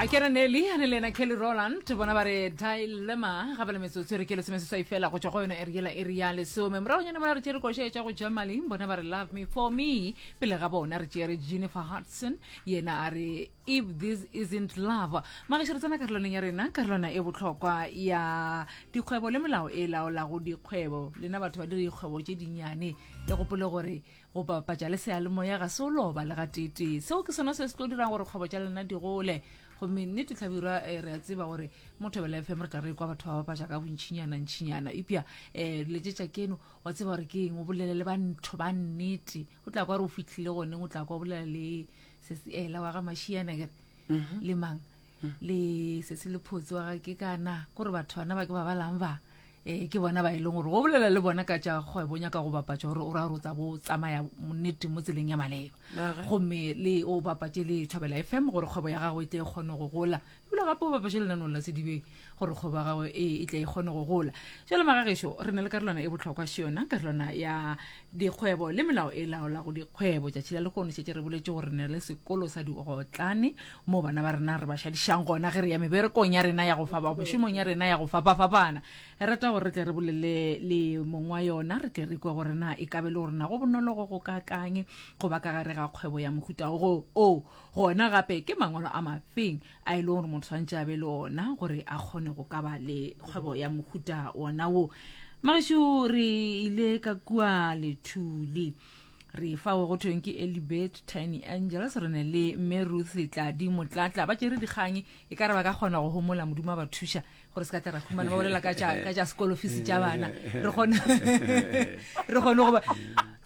a kere nelly a ne le ena kelly roland bona ba re dilema ga ba le metsotso e re ke lesome seswai fela go tswa go yona eriela e re ya lesome moragonyane mola re tšere koša e tša go germany bona ba re love me for me pele ga bona re tšere jennifer hudson yena a re if this isn't love magešo re tsena karolwaneng ya rena karolwana e bohlokwa ya dikgwebo le melao e laolago dikgwebo lena batho ba dire dikgwebo tše dinnyane le gopole gore Go bapatša le seyalemoya ga se o loba le gateetee. Seo ke sona se se tlo dirang gore kgwebo tša lena di gole. Gomme nnete Tlhabirwa, eh, re a tseba gore mo Thobela FM re tla re kwa batho ba bapatša ka bontšhinyana ntšhinyana. Epja um eh, letšetša keno wa tseba gore ke eng, o bolele le bantho ba nnete. O tla kwa re o fihlile goneng, o tla kwa o bolela le sesiela wa ga Mašiana kere mhm. le mang. le sesi lephotse wa ga ke kana ko re batho bana ba ke ba balang ba um ke bona ba e leng gore go bolela le bona ka tša kgwebo nyaka go bapatša gore o ra gore o tsa bo tsamaya nnete mo tseleng ya maleba gomme le o bapatše le thobela e fm gore kgwebo ya gago e tle e kgone go gola ebile gape o bapatše lenanong la sedibeng gore kgwebo ya gago e, e tle e kgone go gola jale magagešo re na le karolwana e botlhokwa se yona karolwana ya Dikgwebo le melao e laolago dikgwebo. Tšatši la lehono šetše re boletše gore re na le sekolo sa diotlane moo bana ba rena re ba šadišang gona ge re ya meberekong ya rena ya go fapa, mešomong ya rena ya go fapafapana. Re rata gore re tle re bolele le mong wa yona re tle re kwe gore na e ka be e le gore na go bonolo go go kaakang go ba ka gare ga kgwebo ya mohuta wo. Gona gape ke mangwalo a mafeng a e leng gore motho tshwanetse a be le ona gore a kgone go ka ba le kgwebo ya mohuta ona wo mageso re ile ka kua lethuli re fa go thweng ke elibet tiny angels re ne le mme ruth tladi motlatla ba tšere dikgang e ka re ba ka kgona go homola modimo a ba thuša gore se ka tla ra khumana ba bolela ka tša sekolo fisi tša bana re kgone re kgone goba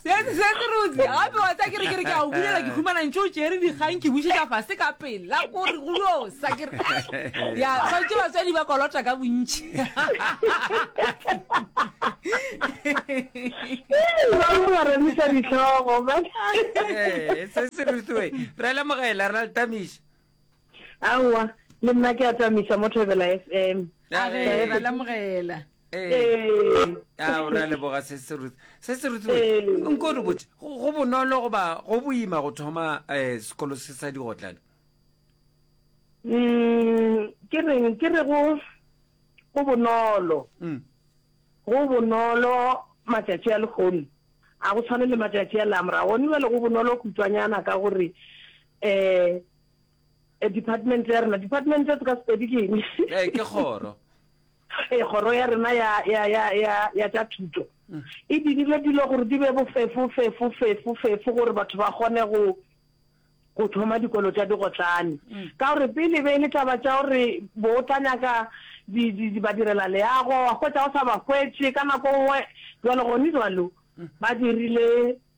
seterotse gape wa tsa kere kere ke a o bulela ke khumana ntse o tšere dikgang ke bušetša fase ka pela kore go yo sa kere ya tshwanetse batswadi ba kolota ka bontšhi se se rutwe re lemogela re na le tamiša aowa le nna ke atamisa mo thebela f m a re Ee. ra lamogela Ee. ee a o ra leboga se se ruth se se ruth Ee. nko re botse go go bonolo goba go boima go thoma um sekolo se sa digotlana Mm, ke reng ke re go go bonolo Mm. go bonolo matšatši a lekgono a go tshwane le matšatši a lamora gone bjale go bonolo khutšwanyana ka gore eh department ya rena department se ka sepedi ke eng eh ke kgoro eh kgoro ya rena ya ya ya ya ya tsa thuto mm. e dirile dilo gore di be bofefo fefo fefo fefo gore batho ba gone go go thoma dikolo tsa digotlane mm. ka gore pele be e le taba tsa gore bo o tla nyaka ba direla leago wa kgwetsa o sa ba kgwetse ka nako nngwe jalo gone jalo mm. ba dirile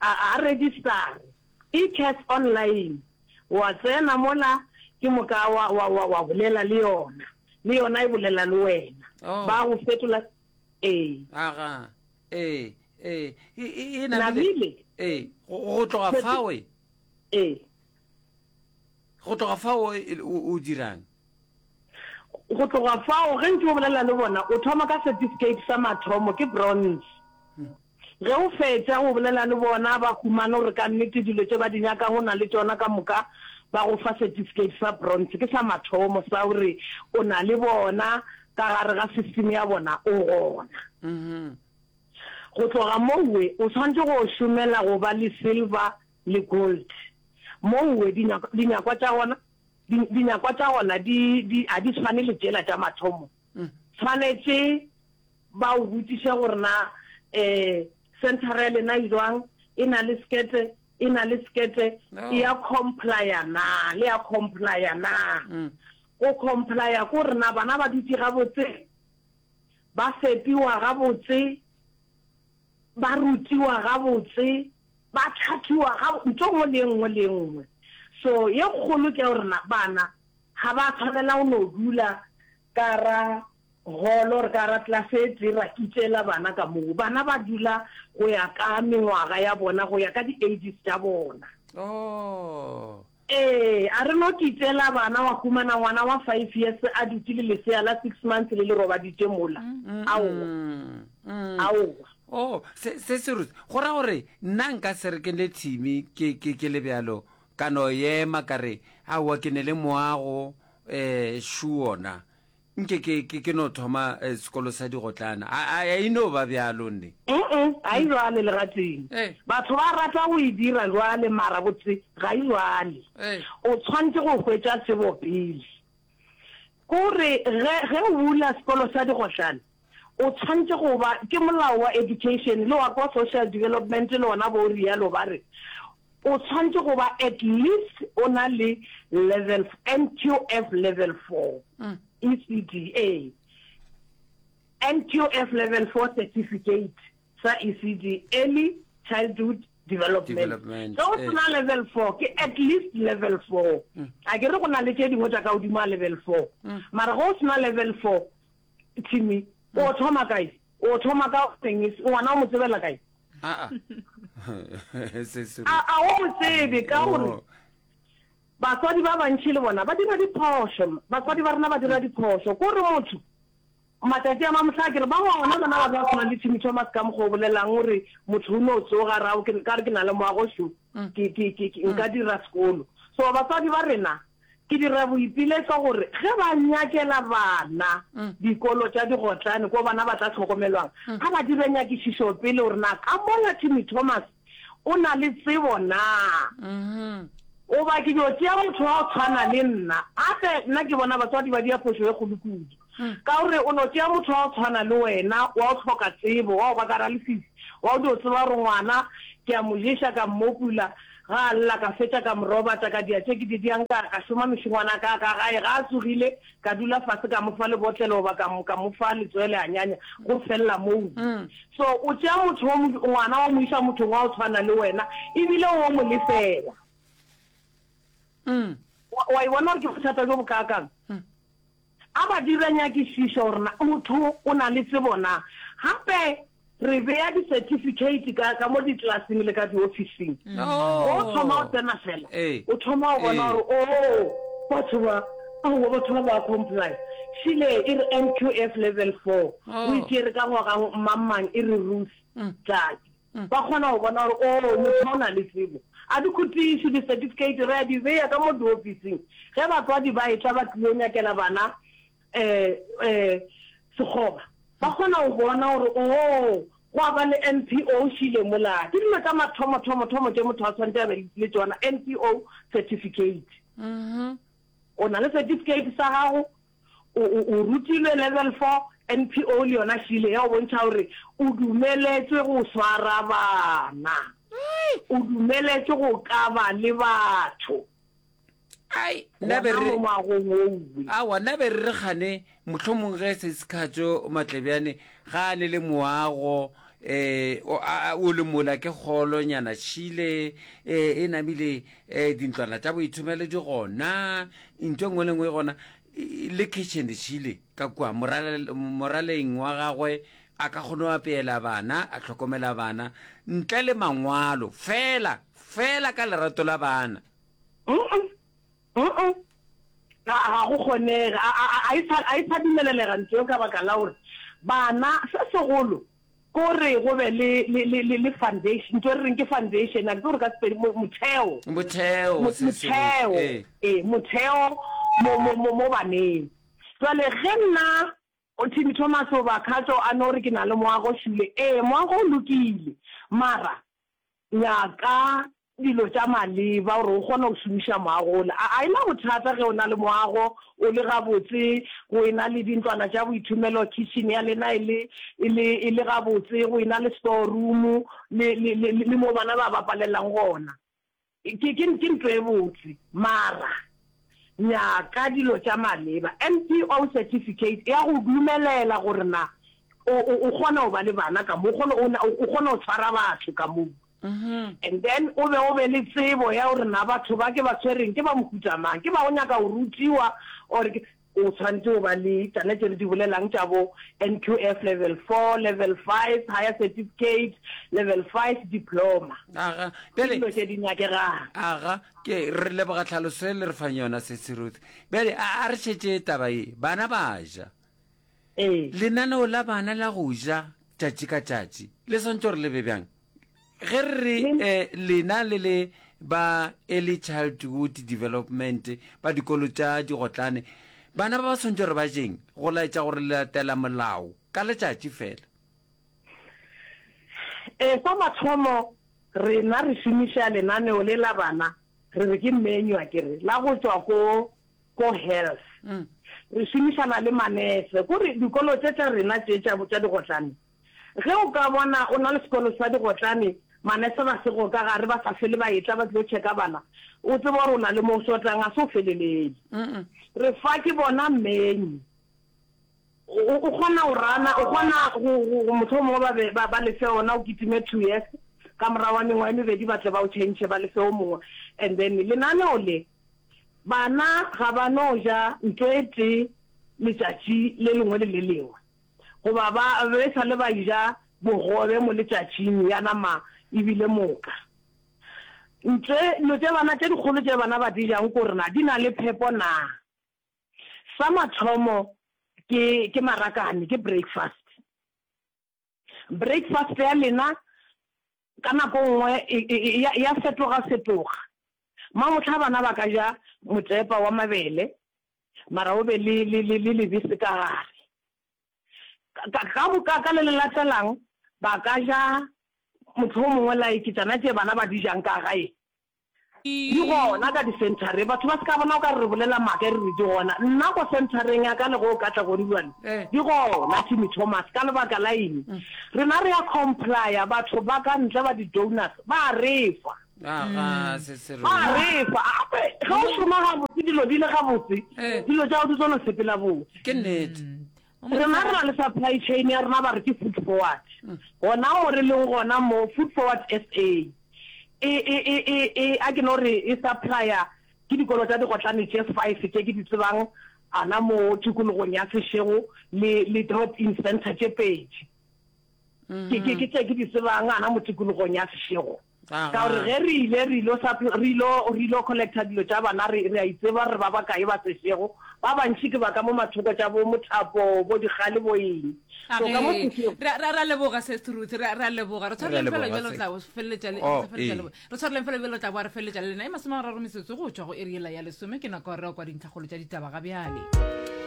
a a register-re eCats online wa tsena mola ke moka wa wa wa wa bolela le yona le yona e bolela le wena Oh. ba go fetola ee aga ee ee e- e- e namile Namile. ee go go tloga fawe ee Go tloga fao o dirang? Go tloga fao, ge ntše o bolela le bona, o thoma ka setifikeiti sa mathomo, ke bronze. Ge o fetša go bolela le bona, ba humana gore ka nnete dilo tše ba di nyakago o na le tšona ka moka, ba go fa setifikeiti sa bronze. Ke sa mathomo sa gore o na le bona ka gare ga system ya bona, o gona. Go tloga moo, o swanetše go šomela go ba le silver le gold. Moue, dinyakwa, dinyakwa tša gona, di, dinyakwa tša gona di, di, ga di tshwane le tšela tša mathomo. Tshwanetše ba o botšiše gore na um centre ya lena e jwang, e na le sekete, e na le sekete, e ya complya na, le ya complya na. Go complya ke gore na bana ba dutše gabotse, ba fepiwa gabotse, ba rutiwa gabotse, Ba tlhathiwa ga nto nngwe le e nngwe le e nngwe. So ye kgolo ke ya gore na bana ga ba tshwanela go no dula ka ra holo or ka ra class e tee ra kitšela bana ka moo. Bana ba dula go ya ka mengwaga ya bona, go ya ka di-ages tša bona. Oh. Ee, a re no ke itšeela bana wa humana ngwana wa five years a dutše le lesea la six months le le robaditše mola. Aowa. Aowa. Oh, se, se se rutse. Go ra gore, nna nka se re ke le thimi, ke, ke, ke le bjalo, ka no ema ka re, Aowa, ke ne le moago, eh, sure na. Nke ke, ke, ke no thoma eh, sekolo sa digotlana. A, a, a e no ba bjalo, nne? Uh-uh, ga e bjale le gatee. Eh. Batho ba rata go e dira bjale, mara botse ga e bjale. Eh. O tshwantse go hwetša tsebo pele. Ko re, ge, ge o bula sekolo sa digotlana, O tshwanetše go ba, ke molao wa education le wa kwa social development le ona bo o rialo ba re o tshwanetše go ba at least o na le level NQF level 4 mm. ECD a NQF level 4 certificate sa ECD early childhood development so o eh. sena level four ke at least level four mm. a ke re go na le tše dingwe tša ka godimo a level four mm. mara go o sena level four Timmy, o thoma kae? O thoma ka eng? Ngwana o mo tsebela kae? Ah, ah. A o mo tsebe ka gore oh. batswadi ba bantšhi le bona ba dira diphošo. Batswadi ba rena ba dira diphošo. Ko re motho matsatsi a mamotlha ke re ba gona bona ba ba tshwana le Timmy Thomas ka mokgwa o bolelang o re motho o ne o tsoga rao ka re ke na le moago sho mm. nka dira sekolo. So batswadi ba rena Ke dira boipiletšo gore ge ba nyakela bana dikolo tša digotlane ko bana ba tla hlokomelwang, a ba dire nyakišišo pele gore na ka mola Timmy Thomas o na le tsebo na, goba ke dio tšea motho wa go tshwana le nna. Gape nna ke bona batswadi ba dia phošo e kgolo kudu. Ka o re o no tšea motho wa go tshwana le wena, wa go hloka tsebo, wa go ba kara lefifi, wa go dio tseba gore ngwana ke a mo ješa, ka mmopula, ga a lla, ka fetša ka mo robata, ka dia tše ke di diang, ka, ka šoma mešongwana ka ka gae, ga a tsogile, ka dula fase, ka mo fa lebotlelo goba ka mo, ka mo fa letswele, a nyanya, go felela moo. So o tšea motho wo, ngwana wa mo iša mothong wa go tshwana le wena, e bile wo mo lefela. Wa, wa e bona gore ke bothata bjo bokaakang? A ba dira nyakišišo gore na motho o na le tsebo na. Gape re bea disetifikeiti ka, ka mo ditlaseng le ka diofising. Ge o thoma go tsena fela, o thoma go bona gore, oo, batho ba, aowa, batho ba ba a comply. Šile e re NQF Level Four, o e tšere ka ngwaga mang-mang, e re Ruth, Tladi. Ba kgona go bona gore, oo, motho o na le tsebo. A dikhotiši, disetifikeiti, re a di bea ka mo diofising. Ge batswadi ba etla ba tlilo nyakela bana um, um, sekgoba, ba kgona go bona gore, oo, gwa ba le NPO šile mola. Ke dilo tša mathomo-thomo-thomo tše motho a tshwanetse a be le tšona, NPO certificate. O na le setifikeiti sa gago, O, o, o rutilwe Level Four, NPO le yona šile ya go bontšha gore o dumeletšwe go swara bana. Ai! O dumeletšwe go kaba le batho. Ai, nna be Gona re- mo ngwagong wo uwe. awa nna be re re kgane mohlomong ge se sekgatšo matlebjane ga a ne le moago um o a- a- o le mola ke kgolonyana šile um e namile um dintlwana tša boithomelo di gona ntho e nngwe le nngwe e gona le kitchen di tšhile ka kua moraleng wa gagwe a ka kgone go apeela bana a tlhokomela bana ntle le mangwalo fela fela ka lerato la bana ga go kgonega a e sa dumelelega ntho eo ka baka la gore bana se segolo Ke go re go be le, le, le, le, le foundation. Ntho e re reng ke foundation, a ke tsebe gore ka Sepedi, mo, motheo. Motheo, Mo- se sengwe, Motheo, ee. ee, motheo mo, mo, mo, mo baneng. Jwale ge nna, o Timmy Thomas goba Khatso a no re ke na le moago, Shule, ee, moago o lokile. Mara, Nyaka dilo tša maleba gore o kgone go šomiša moago ole. A e na bothata ge o na le moago o le gabotse, go e na le dintlwana tša boithomelo, khitšhene ya lena e le, e le, e le gabotse, go e na le storumu le, le, le, le moo bana ba bapalelang gona? Ke, ke, ke ntwa e botse. Mara. nyaka dilo tša maleba. NPO certificate e a go dumelela gore na o o o kgona go ba le bana ka mo o kgona o na- o kgona go tshwara batho ka mo and then o be o be le tsebo ya gore na batho ba ke ba tshwereng ke ba mohuta mang ke ba go nyaka go rutiwa or ke o tshwanetse o ba le tsana tse re di bolelang tša bo NQF level four level five higher certificate level five diploma aga ke bjale dilo tše di nyakegang aga Ke, re leboga tlhaloso ye le re fang yona, Sesi Ruth. Bjale, a, a re šetše taba ye. Bana ba ja. Ee. Lenaneo la bana la go ja tšatši ka tšatši, le swantšo gore le be bjang? Ge re re Le- eh, lena le le ba Early Childhood Development ba dikolo tša digotlane, bana ba ba swantšo gore ba jeng go laetša gore le latela molao ka letšatši fela? Ee, sa mathomo rena re šomiša lenaneo le la bana, re re ke menu a ke re, la go tšwa ko ko health. Re šomišana le manese. Ko re dikolo tše tša rena tše tša tša digotlane, ge o ka bona o na le sekolo sa digotlane, manese ba sego ka gare ba sa fele ba etla ba tlo check-a bana, o tseba gore o na le mo o shotang, ga se o felelele. Re fa ke bona menu. O, o kgona go rana, o kgona go, go, go mohlomongwe ba be ba, ba lefe ona, o kitime two years, ka morago ga mengwaga e mebedi ba tle ba o change ba lefe o mongwe. And then lenaneo le, bana ga ba no ja nto e tee letšatši le lengwe le le lengwe, goba ba be e sa le ba ja bogobe mo letšatšing ya nama e bile moka. Nto e, dilo tše bana tše dikgolo tše bana ba di jang ko rena di na le phepo naa? Sa mathomo ke ke marakane ke breakfast. Breakfast ya lena ka nako nngwe ya fetoga fetoga. Mamohla bana ba ka ja motepa wa mabele mara o be le le le le lebese ka gare. Ka, ka moka ka le le latelang ba ka ja mohlomongwe like tšona tše bana ba di jang ka gae. Di gona ka di-centre-reng. Batho ba se ka bona o ka re re bolela maaka e re re di gona. Nna ko centre-reng ya ka le ge o ka tla ko Ribolwane, di gona Timmy Thomas. Ka lebaka la eng? Rena re a comply-a, batho ba ka ntle ba di-donors ba re fa. ga se se re a refa gape ge o šoma gabotse dilo di le gabotse Eh. dilo tša go di tsona sepela botse ke nnete Mm. rena re na le supply chain ya rena ba re ke food forward gona mo re leng gona mo food forward sa e e e e e a ke no re e supplier ke dikolo tša digotlane tše five tše ke di tsebang ana mo tikologong ya sešego le le drop in center tše pedi ke ke ke tše ke di tsebang ana mo tikologong ya sešego Ka gore ge re ile re ilo suppl-, re ilo, re ilo collecta dilo tša bana, re, re a itseba gore ba bakae ba se šego. Ba bantši ke ba ka mo mathoko tša bo Mothapo, bo Dikgale, bo eng. So ka mo Ee, sešego. re a, re a, re a leboga, Sesth Ruth, re a, re a leboga. Re tshwareleng fela leboga, bjalo re Seth. tla o feleletša le, Oh, re sa feleletša le ee. bo, re tshwareleng fela bjalo re tla boa re feleletša le lena. E masomegararo metsotso go tšwa go iri yela ya lesome, ke nako ya gore re yo kwa dintlhakgolo tša ditaba ga bjale.